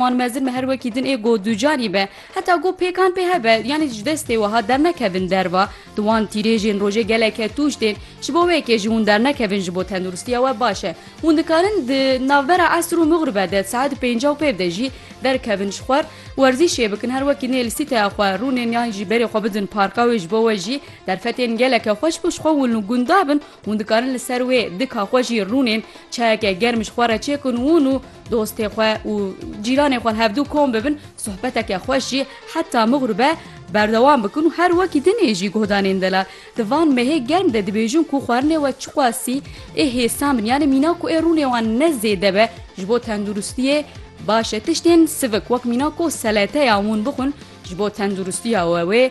Wan mezin me her wekî din ê go ducanî be. Heta go pêkan pê hebe, yanî ji destê wiha dernekevin derva. Di wan tîrêjên rojê geleke tûj tên. Ji bo wê yekê ji hûn dernekevin ji bo tenduristiya we baş e. Hûn dikarin di navbera esr û mixribe de saet pênca û pêv de jî derkevin ji xwar, werzîşê bikin, her wekî nê li sîteya xwe rûnên yan jî berê xwe bidin parka wê ji bo we jî derfetên geleke xweş bo ji xwe hûn li gunda bin. Hûn dikarin li ser wê dika xwe jî rûnên çayeke germ ji xwe re çêkin û hûn û Dostê xwe û cîranê xwe hevdû kom bibin, sohbeteke xweş jî heta mixur be berdewam bikin û her wekî din ê jî guhdanên delal. Di van mehê germ de dibêjin ku xwarinê we çiqasî ê hêsan bin yanê mîna ku ê rûnê wan ne zêde be ji bo tenduristiyê baş e. Tiştên sivik wek mîna ku seleteya hûn bixwin ji bo tenduristiya we wê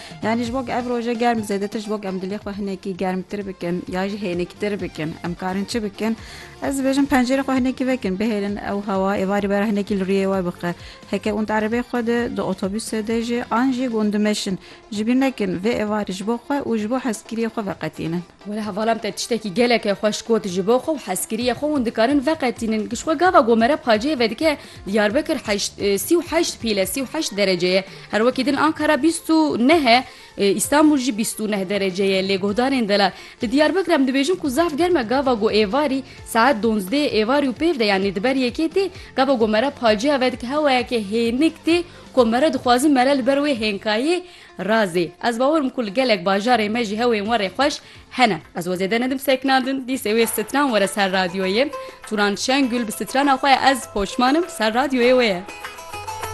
Yanî ji bo ku ev roje germ zêdetir ji bo ku em dilê xwe hinekî germtir bikin ya jî hêniktir bikin em karin çi bikin? Ez dibêjim pencêrê xwe hinekî vekin bihêlin ew hewa êvarî bera hinekî li rûyê we bixe. Heke und erebeyê xwe de di otobusê de jî an jî gundimeşin. Ji bîr nekin vê êvarî ji bo xwe û ji bo hezkiriyê xwe veqetînin. Were hevalam te tiştekî geleke xweş got ji bo xwe û hezkiriyê xwe hûn dikarin veqetînin. Ji xwe gava ku mere pacê vedike Diyarbekir heşt sî û heşt pîl e, sî û heşt derece ye. Her wekî din Ankara bîst û neh e, Îstanbul jî bîst û neh derece ye lê guhdarên delal. Li Diyarbekir em dibêjin ku zaf germ e gava ku êvarî saet donzdê êvarî û pêv de yanî di ber yekê tê, gava ku mere pacê vedike hewayeke hênik tê ku mere dixwazin mere li ber wê hênkayê Razê. Ez bawer im ku li gelek bajarê me jî hewên werê xweş hene. Ez we zêde nedim sekna din. Dîsê wê stran were ser radyoyê. Turan Şengül bi strana xwe ye ez poşman im, ser radyoyê wê ye.